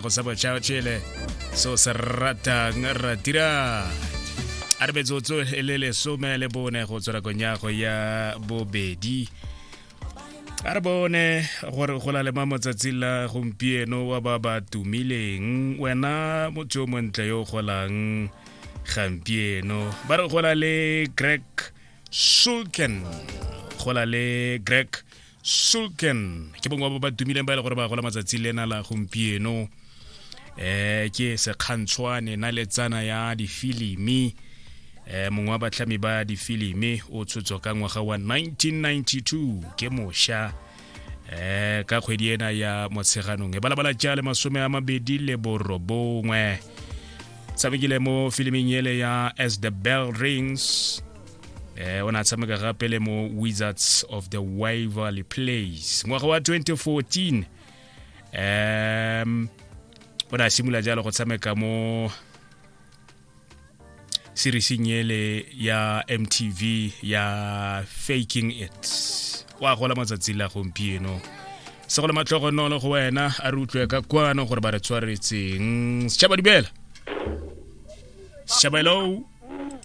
go sa botšhao tšele so se ratang ratira a re metsotso e le lesome le bone go tswa nakong ya go ya bobedi a re bone gore go la le ma motsatsi la gompieno wa ba ba tumileng wena motho yo montle yo o golang gampieno ba re go la le greg sulken go la le greg sulken ke bongwe ba ba tumileng ba e le gore ba gola matsatsi lena la gompieno eh ke sekgantshwane na letsana ya difilimi eh mongwe wa batlhami ba difilimi o tshotswa ka ngwaga wa 1992 ke mosha eh ka kgwedi ena ya motsheganong e balabala ja le masome a mabedi le borobongwe tshamekile mo filiming ele ya as the bell rings eh o ne a tshameka gape le mo wizards of the waverly place ngwaga wa 2014 um o ne a simolola jalo go tshameka mo serising ele ya mtv ya faking it wa gola matsatsi la gompieno se go le matlhogonolo go wena a re utlwe ka kwano gore ba re tshwaretseng setšhaba dumela setšhaba hello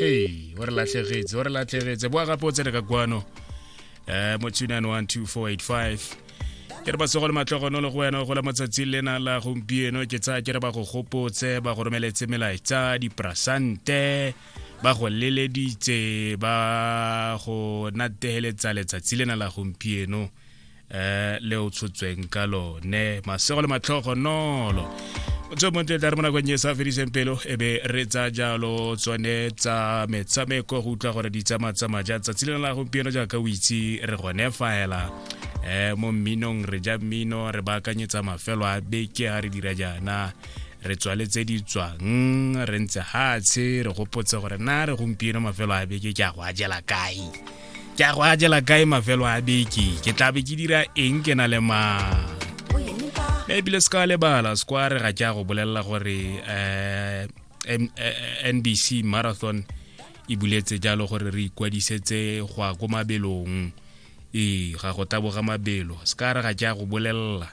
hey o re latlhegetse o re latlhegetse boa gape o tsene ka kwano um mo 2912485 ke re batsogo le matlogono le go wena go la matsatsi lena la gompieno ke tsaya ke re ba go gopotse ba go romeletse melaetsa diprasante ba go leleditse ba go nategeletsa letsatsi lena la gompieno eh le o tshotsweng ka lone masego le matlhogo nolo tswe montle tla re mo nakong e sa fediseng pelo e be re tsa jalo tsone tsa metshameko go utlwa gore di tsamaya tsamaya ja tsatsi lena la gompieno jaaka o itse re gone faela um mo mminong re ja mmino re baakanyetsa mafelo a beke ga re dira jaana re tswaletse di tswang re ntse gatshe re gopotse gore na re gompieno mafelo a beke ke a go a jela kae ke a go a jela kae mafelo a beke ke tla be ke dira eng ke na le ma ebile se ka lebala sekware ga ke a go bolelela gore um nbc marathon e buletse jalo gore re ikwadisetse go ya ko mabelong ee ga go taboga mabelo se ka re ga ke a go bolelela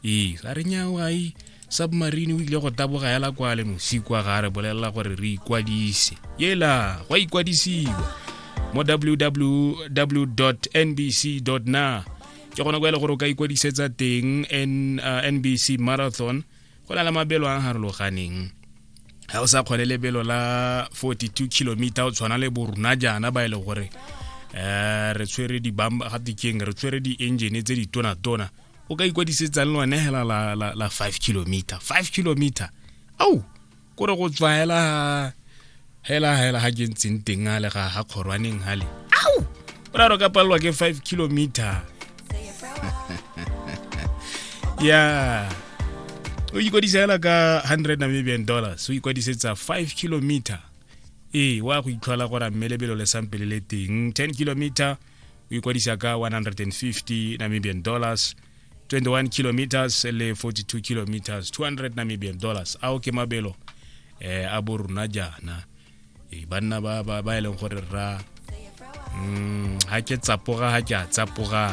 ee ga re nyawae submarine o ile go taboga ya lakwa le mosikwa ga re bolelela gore re ikwadise yela go ikwadisiwa mo www nbc na ke gona kwa e le gore o ka ikwadisetsa teng nbc uh, marathon go na le mabelo a harologaneng ga o sa kgone lebelo la 42 kilometer o tshwana le borona jaana ba e le gore um re tshwere dibamba gatekeng re tshwere di-engine tse ditonatona o ka ikwadisetsang le one hela la, la, la five kilometer five kilometer au kore go tswaela hela hela ha ke ntseng teng a le ga ga kgorwaneng gale au o ra re ka palelwa ke five kilometer ya o ikwadisa hela ka hundred namibian dollars o ikwadisetsa five kilometer ee wa go itlhola gore mmelebelo le sampele le teng ten kilometer o ikwadisa ka 150 namibian dollars 21 kilometers le 42 kilometers 200 namibian dollars ao ke mabelo eh, a bo rona jaana e, banna ba, ba, ba e leng gore rra mm, ga ke tsapoga ga ke a tsapoga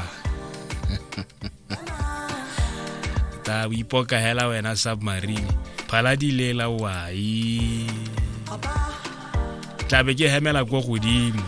ta o ipoka hela wena submarine phala di lela wai tlabe ke hemela ko godimo